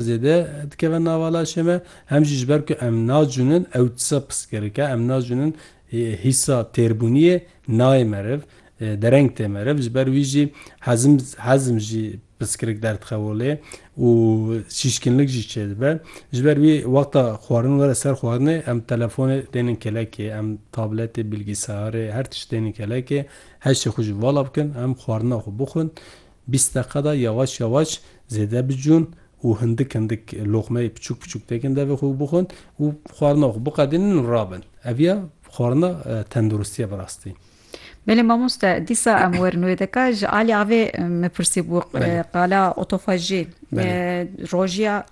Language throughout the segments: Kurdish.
Zêde dikeve nava laşê me, hem jî ji ber ku em nacûnin ew tisa pirsgirêk e, em nacûnin hîsa têrbûniyê nayê meriv, dereng tê meriv, ji ber wî jî hezim hezim jî pirsgirêk derdixev olê û şîşkinlik jî çêdibe. Ji ber wî wexta xwarin were ser xwarinê em telefonê dênin kelekê, em tabletê, bilgisayarê, her tişt dênin kelekê, heşê xwe ji vala bikin, em xwarina xwe bixwin. Bîst deqada yawaş yawaş zêde bicûn û hindik hindik loqmeyê piçûk piçûk têkin devê xwe û bixwin û xwarina xwe biqedînin û rabin. Ev ya xwarina tenduristî ye bi rastî. Belê mamoste, dîsa em werin wê deka ji alî avê min pirsîbû qala otofajî rojiya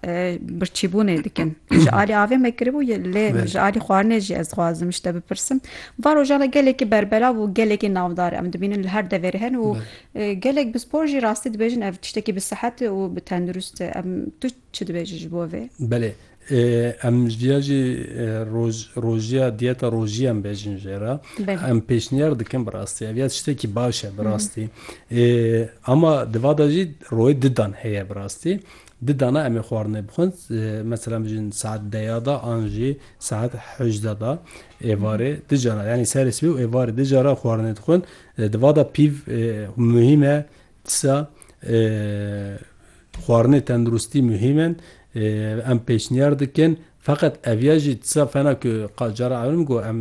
birçîbûnê dikin. Ji alî avê me kiribû lê ji alî xwarinê jî ez dixwazim ji te bipirsim. Van rojan re gelekî berbelav û gelekî navdar em dibînin li her deverê herin û Gelek pispor jî rastî dibêjin ev tiştekî bi sihet û bi tendurist e. Em tu çi dibêjî ji bo vê? Belê. Em ji diya jî roz rojiya diyeta rojiyê em bêjin jê re. Belê. Em pêşniyar dikin bi rastî. Ev ya tiştekî baş e bi rastî. Ama di va de jî royê di dan heye bi rastî. Di dana em ê xwarinê bixwin. Mesela bijîn saet deya de an jî saet hejde de êvarê di cara yanî serê sibê û êvarê di cara xwarinê dixwin. Di va de pîv muhîm e, disa xwarinê tenduristî muhîm in. Em pêşniyar dikin feqet ev ya jî disa fena ku qal cara ewil min got em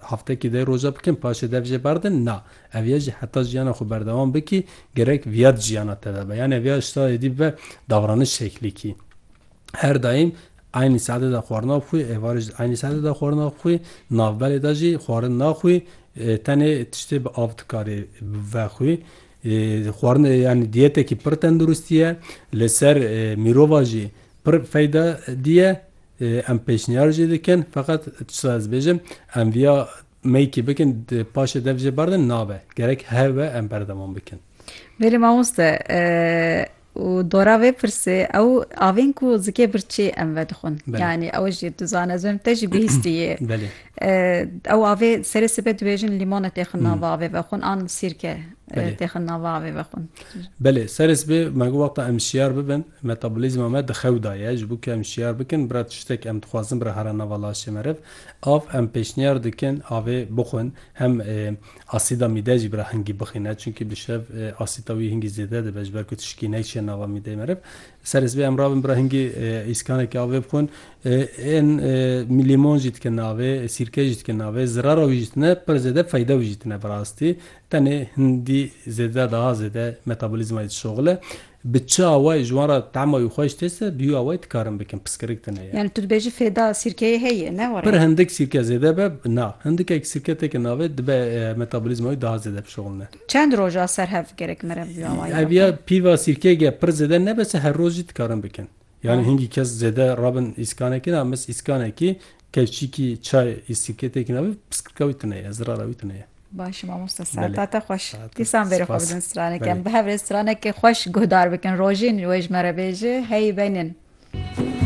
heftekî deh roja bikin paşê dev jê berdin na. Ev ya jî heta jiyana xwe berdewam bikî gerek viya di jiyana te de be. Yanê viya ji sahê dî bibe davranij şeklîkî. Her daîm eynî saetê de xwarina xwî, êvarê jî eynî saetê de xwarina xwî, navberê de jî xwarin naxwî, tenê tiştê bi av dikarê vexwî. Xwarin yanî diyetekî pir tenduristî ye, li ser mîrova jî pir feyda dîye. Em pêşniyar jî dikin feqet tişta ez bêjim em viya meykî bikin paşê dev jê berdin nabe. Gerek heve em berdewam bikin. Belê mamoste û dora vê pirsê ew avên ku zikê birçî em vedixwin yanî ew jî dizan ez vêm te jî bihîstî yê ew avê serê sibê dibêjin lîmone têxin nava avê vexwin an sîrke têxin nava avê vexwin Belê serê sibê me got wexta em şiyar bibin metabolîzma me di xew da ye ji bo ku em şiyar bikin bira tiştek em dixwazin bira here nava laşê meriv av em pêşniyar dikin avê bixwin hem Asîda mîdeyê jî bi re hingî bixîne çunkî bi şev asîta wî hingî zêde dibe ji ber ku tişikî neyçe nava mîdeyê meriv. Serê sibê em rabin bi re hingî îskanekî avê bixwin. Ên lîmon jî dikin avê, sîrke jî dikin avê. Zirara wî jî tune, pir zêde feyda wî jî tune bi rastî. Tenê hindî zêde daha zêde metabolîzmayê dişoxile. Bi çi awayî ji wan re tema wî xweş têse, bi wî awayî dikarin bikin, piskirik tune ye. Yani tu dibêjî fêda sîrkeyê heye, ne were? Pir hindik sîrke zêde be, na. Hindikek sîrke têke navê, dibe metabolîzma wî daha zêde bişuxulne. Çend roj a ser hev gerek mere bi wî awayî? Ev ya pîva sîrkeyê ge pir zêde nebise, her roj jî dikarin bikin. Yanî hingî kes zêde rabin îskanekî na mis îskanekî kevçîkî çay î sîketê kî na bi piskirka wî tune ye zirara wî tune ye. Baş mamoste sertate xweş. Dîsan bêrê xwe bidin stranekê em bi hev rê stranekê xweş guhdar bikin rojîn wê ji me re bêje hey benin.